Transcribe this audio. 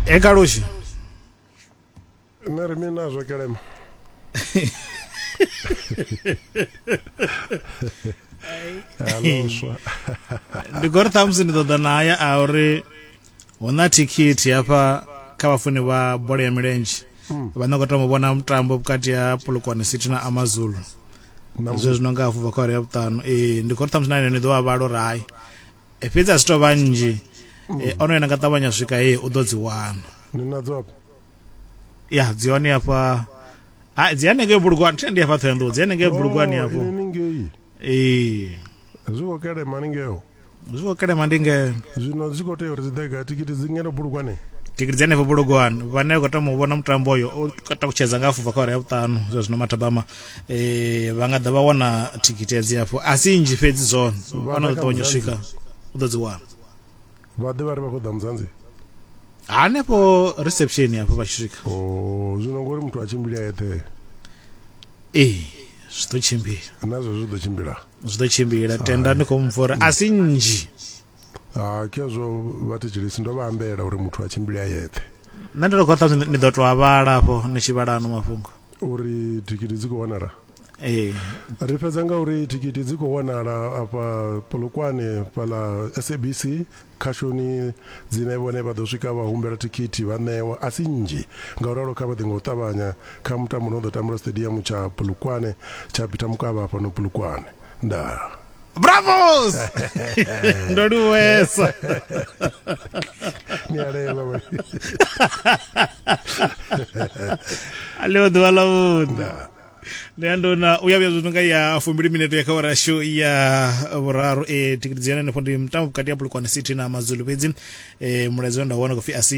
e kaloshi nṋe ri mini nazwo kelema aloswa ndi gori ṱhamusi ndi ṱoḓa naya a uri hu na thikhithi hafha kha vhafuni vha bola ya milenzhe hmm. vha no khou tama vhona mutambo vhukati ha polokwane city na amazulu zwe zwino nga hafhu bva kha uri ya vhuṱanu ee ndi gori ṱhamusi na ine ni ḓo vha vhalo uri hai e fhedzi a si tou vha nnzhi e, ono yena nga ṱavhanya swika ye u ḓo dzi wana ndi nadzo afha ya dzi hone afha ha dzi hanengei bulugwani thende afha ṱhoyanḓou dzi hanengei bulugwani afho oh, inengei ee zwi khou kelema haningeo zwi khou kelema ndi nge zwino zwi khou tea uri dzi ḓega tikiti dzi ngeno bulugwane tikiti dzi hanefho bulugwani vhane vha khou tama u vhona mutambo uyo u katutshedza nga afho bva kha uri ya vhuṱanu zwa zwino mathabama eh vha nga ḓa vha wana thikhithi ya dzilafho a si nnzhi fhedzi zwone vhana ḓo ṱavhanya u swika u ḓo dzi wana vha ḓe vha ri vha khou ḓa mudzanzi hanefho reception hafho vha tshi swika o oh, zwino ngori muthu a tshimbila eṱhe ee zwi ḓo tshimbila nazwo zwi ḓo tshimbila zwi ḓo tshimbila tenda ndi khou mupfa uri a si nnzhi Ha, khezwo vhathetshelesi ndo vha ambela uri muthu a tshimbile a yeṱhe. Nṋe ndi to khou ṱhanzi ni ḓo to a vhala afho ni tshi vhala ano mafhungo. Uri thikhithi dzi khou wanala? Ee. Ri fhedza nga uri thikhithi dzi khou wanala afha Polokwane fhaḽa SABC khashoni dzine vhone vha ḓo swika vha humbela thikhithi vha ṋewa a si nnzhi nga u ralo kha vha ḓe nga u ṱavhanya kha mutambo no ḓo tambelwa stadium tsha Polokwane tsha Peter Mokaba fhano Polokwane. Ndaa. Bravos! Ndo luwesa. Miarelo we. Aleo ḓuvha ḽa vhuḓa. Ndi ya ndona u ya vhuya zwino nga ya fumbili minete ya kha awara yashu ya vhuraru e tikiti dzi yone henefho ndi mutambo vhukati ha Polokwane City na Mazulu fhedzi eh mulaedza we nda wana khou pfi a si